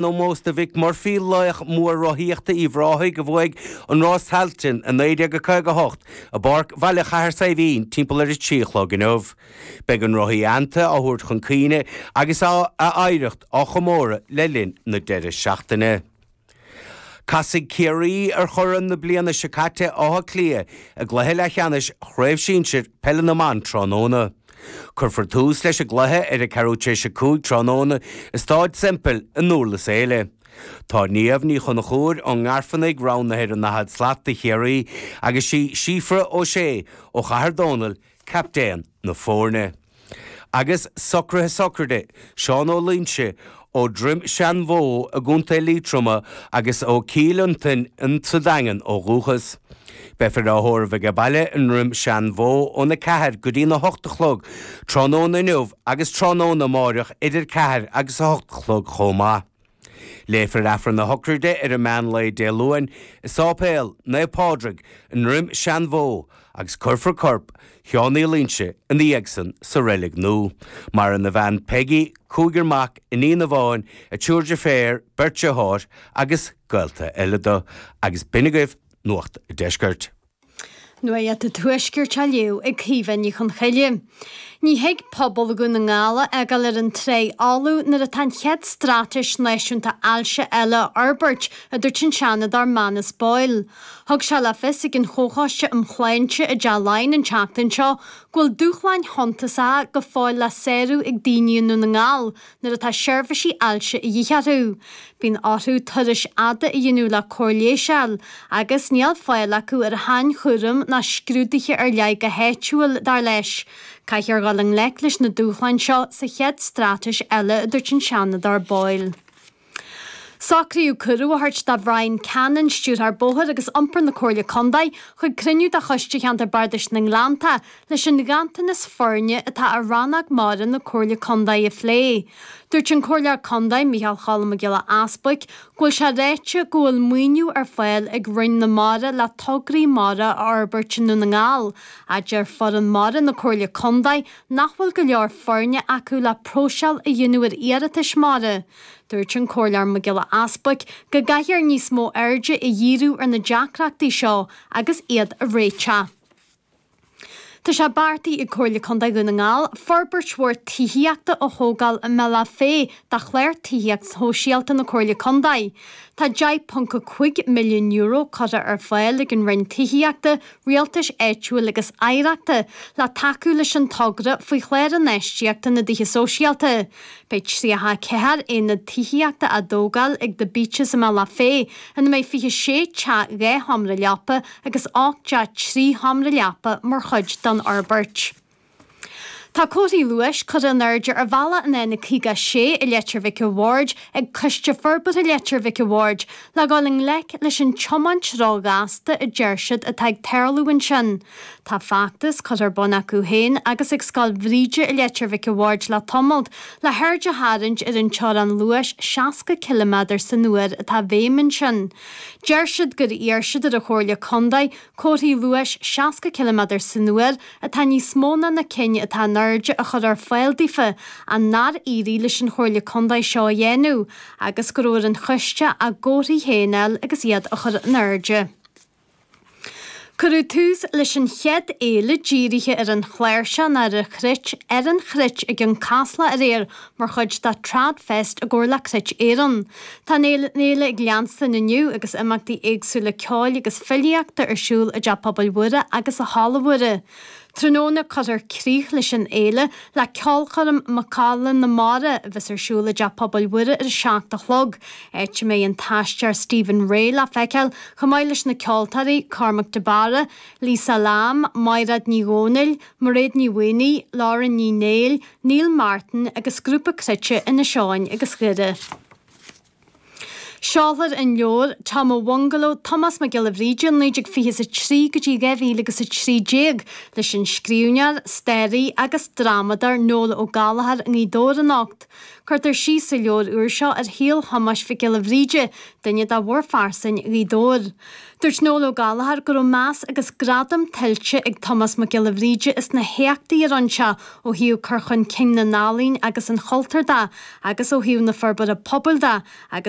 n-ómós do Mhick Murphy, laoch mór rothaíochta Uíbh Ráthaigh a bhuaigh an Rás Tailteann i 1958 i bPáirc Bhaile Chathair Saidhbhín timpeall ar a trí a chlog inniu. Beidh an rothaí aitheanta á thabhairt chun cuimhne agus a oidhreacht á chomóradh le linn na deiridh seachtaine. Casfaidh Ciarraí ar churaidh na bliana seo caite, Áth Cliath, i gcluiche leathcheannais Chraobh Shinsir Peile na mBan tráthnóna. Cuirfear tús leis an gcluiche ar a ceathrú tar éis a cúig tráthnóna i Stáid Semple i nDúrlas Éile. Tá Niamh Ní Chonchúir ón nGairfeannaigh roghnaithe ar an 40 slat do Chiarraí agus sí Síofra O'Shea ó Chathair Dónall captaen na foirne. Agus socruithe sochraide Seán Ó Loingsigh ó Dhroim Seanbhó i gContae Liatroma agus ó Chill Fhionntain sa Daingean ó dhúchas. Beifear á thórramh aige baile i nDroim Seanbhó ón 4 go dtí'n 8 a chlog, tráthnóna inniu agus tráthnóna amáireach idir 4 agus 8 a chlog chomh maith. Léifear Aifreann na Sochraide ar an meán lae Dé Luain i Sáipéal Naomh Pádraig i nDroim Seanbhó agus cuirfear corp Sheáin Uí Loingsigh ina dhiaidhsan sa reilig nua. Maireann a bhean Peigí, cúigear mac, iníon amháin, triúr deirféar, beirt deartháir agus gaolta eile do. Agus b'in agaibh Nuacht an Deiscirt. Nuacht an Tuaiscirt á léamh ag Caoimhe Ní Chonghaile. Ní thig pobal Dhún na nGall a fhágáil ar an tráigh fholamh nuair atá an chéad straitéis náisiúnta ailse eile á forbairt, a dúirt an Seanadóir Manus Boyle. Thug sé le fios ag an Chomhchoiste um Shláinte i dTeach Laighean an tseachtain seo go bhfuil dúshláin shuntasacha go fóill le sárú ag daoine i nDún na nGall Nuair atá seirbhísí ailse a dhíth orthu, bíonn orthu turais fhada a dhéanamh le cóir leighis a fháil agus níl fáil acu ar shainchúram ná scrúduithe ar leith go háitiúil, dar leis. Caithfear dhul i ngleic leis na dúshláin seo sa chéad straitéis eile, a dúirt an Seanadóir Boyle. Socraíodh cuireadh a thabhairt do Bhrian Cannon, Stiúrthóir Bóthair agus Iompair na Comhairle Contae, chuig cruinniú de Choiste Cheantar Bardais na nGleannta leis an ghanntanas foirne atá ar rannóg mara na Comhairle Contae a phlé. Dúirt an Comhairleoir Contae, Micheál Cholm Mac Giolla Easbuic, go bhfuil sé ráite go bhfuil maoiniú ar fáil ag Roinn na Mara le tograí mara a fhorbairt i nDún na nGall, ach deir foireann mara na Comhairle Contae nach bhfuil go leor foirne acu le próiseáil a dhéanamh ar iarratais mhara. Dúirt an Comhairleoir Mac Giolla Easbuic go gcaithfear níos mó airde a dhíriú ar na deacrachtaí seo agus iad a réiteach. Tá sé beartaithe ag Comhairle Contae Dhún na nGall forbairt mhór tithíochta a thógáil i mBealach Féich do Chlár Tithíochta Sóisialta na Comhairle Contae. Tá €10.5 milliún curtha ar fáil ag an Roinn Tithíochta, Rialtais Áitiúil agus Oidhreachta le tacú leis an togra faoi Chlár Infheistíochta na dTithe Sóisialta. Beidh 34 aonad tithíochta á dtógáil ag The Beeches i mBealach Féich, ina mbeidh 26 teach dhá sheomra leapa agus 8 dteach trí sheomra leapa mar chuid den fhorbairt. Tá comharthaí luais curtha in airde ar bhealach an N56 i Leitir Mhic a' Bhaird ag Coiste Forbartha Leitir Mhic a' Bhaird le dhul i ngleic leis an tiomáint ró-ghasta a deir siad atá ag tarlú ansin. Tá feachtas curtha ar bun acu féin agus ag Scoil Bhríde i Leitir Mhic a' Bhaird le tamall le haird a tharraingt ar an teorainn luais 60 ciliméadar san uair atá i bhfeidhm ansin. Deir siad gur iarr siad ar an Chomhairle Contae Comharthaí luais 60 ciliméadar san uair atá níos mó ná na cinn atá in airde a chur ar fáil daofa, ach nár éirigh leis an Chomhairle Contae seo a dhéanamh, agus go raibh ar an choiste a gcomharthaí féin a fháil agus iad a chur in airde. Cuireadh tús leis an chéad fhéile dírithe ar an chláirseach, Cruit ar an Chruit,, i gCionn Caslach aréir, Mar chuid de Thradfest i gcomhar le Cruit Éireann, tá an fhéile ag leanstan inniu agus imeachtaí éagsúla ceoil agus filíochta ar siúl i dTeach Pobail Mhuire agus i Halla Mhuire. Tráthnóna, cuirfear críoch leis an fhéile le ceolchoirm 'Macalla na Mara' a bheas ar siúl i dTeach Pobail Mhuire ar a seacht a chlog, áit a mbeidh an t-aisteoir Stephen Rea le feiceáil chomh maith leis na ceoltóirí Cormac de Barra, Lisa Lambe, Maighreád Ní Dhomhnaill, Mairéad Ní Mhaonaigh, Lauren Ní Néill, Neil Martin agus grúpa cruite Inis Eoghain agus Dhoire. Seolfar an leabhar, Tom a Bhungalow, Tomás Mac Giolla Bhríde 1920 is a 3 go dtí 2000 agus a 13, leis an scríbhneoir, staraí agus drámadóir Noel Ó Gallchóir i nGaoth Dobhair anocht. Cuirtear síos sa leabhar úr seo ar shaol Thomáis Mhic Giolla Bhríde, duine de mhórphearsana Ghaoth Dobhair. Dúirt Noel Ó Gallchóir go raibh meas agus gradam tuillte ag Tomás Mac Giolla Bhríde as na héachtaí a rinne sé ó thaobh cur chun cinn na n-ealaíon agus an chultúir de agus ó thaobh na forbartha pobail de agus